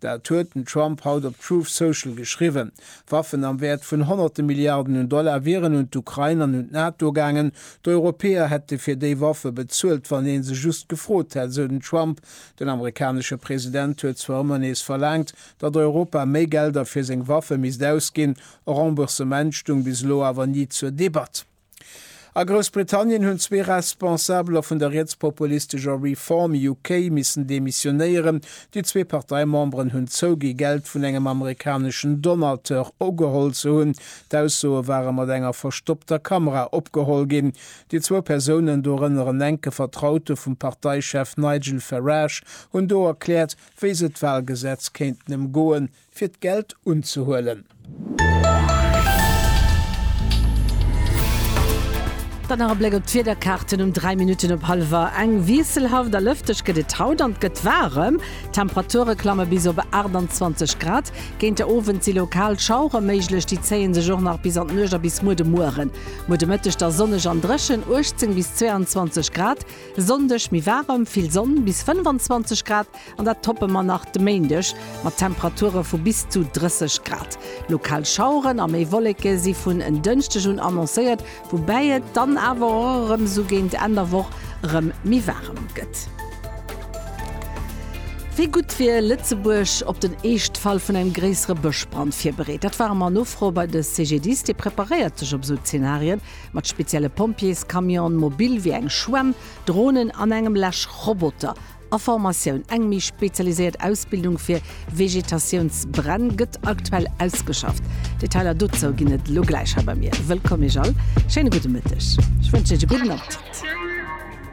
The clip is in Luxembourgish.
Dat huet den Trump haut op Truth Social geschriwwen. Waffen am Wäert vun honnerte Milliarden un Dollar wieren un d'Ukrain an un d'NATO gaangen. D'Europäer hätte fir déi Waffe bezuelt, wann ee se just gefrot hätt, sou den Trump. Den amerikanesche President huet zwar ëmmer nees verlaangt, datt Europa méi Gelder fir seng Waffe misst ausginn. E Remboursement stoung bis elo awer ni zur Debatt. A Groussbritannien hunn zwee Responsabeler vun der rietspopulistescher Reform UK missen demissionéieren. Déi zwee Parteimemberen hunn zougi Geld vun engem amerikaneschen Donateur ugeholl ze hunn. D'Aussoe ware mat enger verstoppter Kamera opgeholl ginn. Déi zwou Persounen, dorënner en enke Vertraute vum Parteichef Nigel Farage, hunn do erkläert, wéi se d'Walgesetz kéinten ëmgoen, fir d'Geld unzehuelen. Dann nach e Bléck op d'Wiederkaarten um 3 Minutten op hallwer eng. Wiesselhaft a lëfteg gëtt et haut an et gëtt waarem. D'Temperature klamme bis op 28 Grad. Géint de Owend si lokal Schauere méiglech, déi zéie sech och nach bis an d'Nuecht a bis muer de Mueren. Muer de Mëtteg da sonneg an dréchen, 18 bis 22 Grad. Sonndeg méi waarem, vill Sonn, bis 25 Grad. An dat toppe mer nach de Méindeg mat Temperature vu bis zu 30 Grad. Lokal Schaueren a méi Wolleke si vun en Dënschdeg un annoncéiert, woubäi et dann awer och erëm esou géint Enn der Woch erëm méi waarem gëtt. Wéi gutt wier Lëtzebuerg op den Eeschtfall vun engem gréissere Bëschbrand virbereet? Dat ware mer nofroe bei de CGDIS. Dee preparéiert sech op esou Zenarien mat spezielle Pompjeescamionen, mobil wéi eng Schwämm, Dronen an engem Läschroboter. A Formatioun. Eng méi spezialiséiert Ausbildung fir Vegetatiounsbränn gëtt aktuell ausgeschafft. Detailer dozou ginn et elo gläich hei bei mir. Wëllkomm Iech all, schéine gudde Mëtteg. Ech wënschen Iech e gudden Appetit.